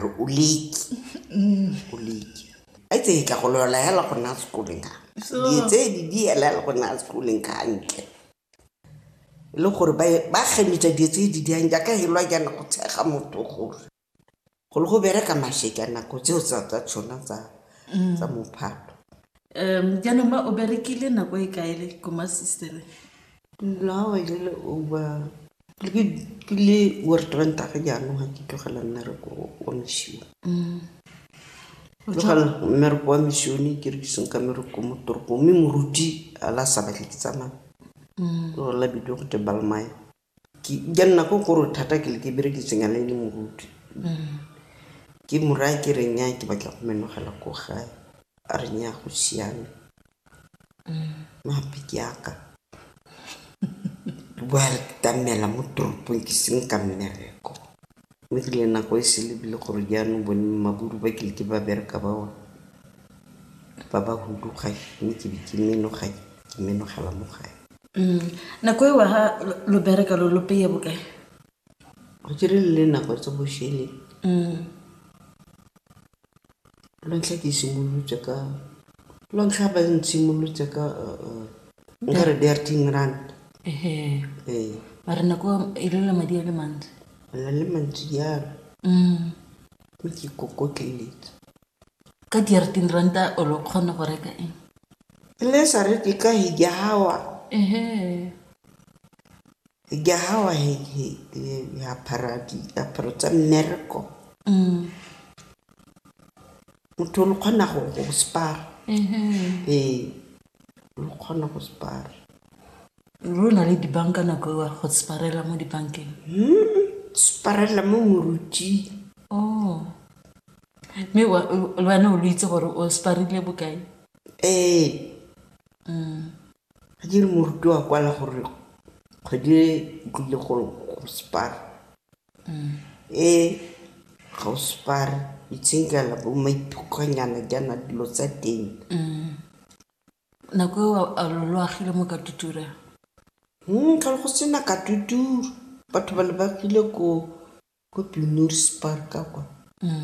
o leki o leki a itse e tla go lola hela go nna sekoleng ka dietse di di hela hela go nna sekoleng ka ntle e le gore ba gemetsa dietse di di yang jaaka helwa jaana go tshega motho gore go le go bereka mashe ka nako tseo tsa tsa tshona tsa mm. tsa mophato um jaanong ma o berekile nako e kaele ko masisteren lawa e le over Ke le worried ka ntlha ya gore jaanong ga ke tlogela mmereko wa moshione. Ke tlogela mmereko wa moshione ke re ke senka mmereko mo toropong mme moruti a le a sa batle ke tsamaye. Ke gore la bidiwa gote Balmain. Ja nna ko gore thata ke le ke berekiseng yana e le moruti. Ke mo raya ke re nnyaa ke batla go menogela ko gae. re nya go siame mape ke aka re bua re ka mmela mo toropong ke seng ka mmereko mme ke le nako e se lebile gore jaanong bone maburu ba kile ke ba bereka ba one ba ba huduga mme ke be ke menoga ke menogela mo gae nako e wa ga lo bereka lo lo peye bokae Go kile le nako tse boshele lwa ntlha ke simolotse ka, lwa ntlha ba ntshimolotse ka nkare di a ten rand. Ee. Mara nako eo e ne e le madi a le mantsi. A ne a le mantsi jalo. Ke ne ke ikokotleletse. Ka di a re ten ranta o ne o kgona go reka eng? E ne e sa reke ka . Ke a gawa he, he, he, he apara diaparo tsa mmereko motho lo kgona go go spara ee lo kgona go spara ro na le dibanka nako ewa go sparela mo dibankeng sparela mo moruti o mme wa- wena o lo itse gore o sparile bokae ee Ga ke re moruti wa kwala gore kgwedi e e tlile go separa. E ga o separe itshenkela bo maiphukgonyana jaana dilo tsa teng. Nako eo a lo lo agile mo Katutura? Go ne go sena Katutura, batho ba ne ba agile ko Ko Pylorus Park kwa,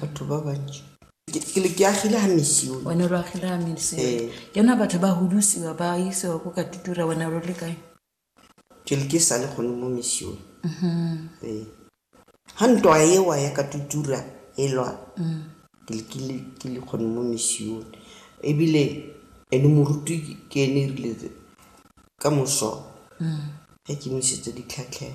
batho ba bantši. Ke le ke agile ga misione. Wena lo agile ga misione. Ee. Jaanong batho ba hudusiwa ba isiwa ko ka tutura wena lo le kae? Ke le ke sa le gone mo misione. Ee. Ga ntwa ewa ya ka tutura e lwa, ke le ke le ke le gone mo misione. Ebile ene moruti ke ene erile ka moso ge ke mo isetsa ditlhatlhego.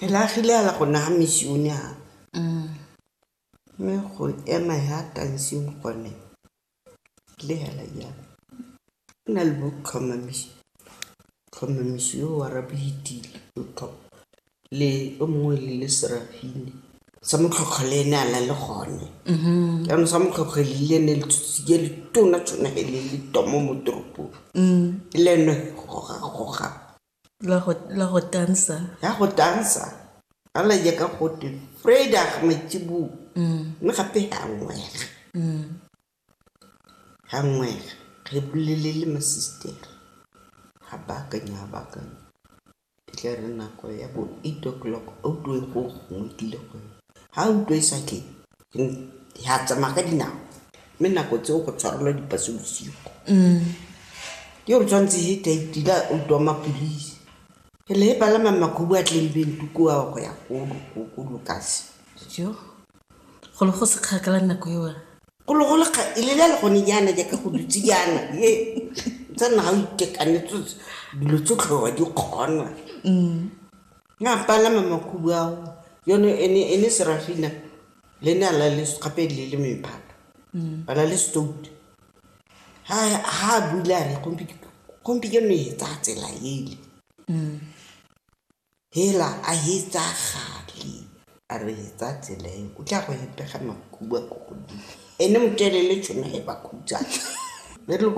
Re agile a la go naya misione a mme go ema ya tanseng gone le hela ya o na le bo tlhomamisi tlhomamisi yo wa rabitile o tlho le o mongwe le le serafini sa motlhotlho le ene a na le gone jaanong sa motlhotlho le le ne le tshotse ke le tona tshwana le le tomo mo toropong le ene goga goga La go, la go tansa. ya go tansa a la ya ka gotwe vrydag maitsiboo mme gape ga ngwega ga ngwega re bolele le masistere ga baakanya ga baakanya e tla re nako ya bo eight o'clock a utlwe go gongwe tlile go ga utlwe e sa tle Re a tsamaya ka dinao. Mme nako tseo go tshwarelwa dipaso bosigo. Ke gore tshwanetse he tla itila o twa mapolisi. Re le he palama makhubu a tleng bentu ko a go ya ko lokasi. Jo, go le go se kgakala nako eo. Go le go le kga, e lela le gone jaana jaaka go dutse jaana. He, tsa nna ga o itekanetse dilo tsotlhe wa di kgona. Na palama makhubu ao, yono ene, ene Serafina le ne a la le gape le le mephato. Ba la le stout. Ha, ha a bula a re, gompi, gompi ke no e tsaya tsela ele. Hela, a e tsaya gale, a re e tsaya tsela e, o tla go e pega makhubu a ko godimo. Ene motelele tšhono e ba khutsana.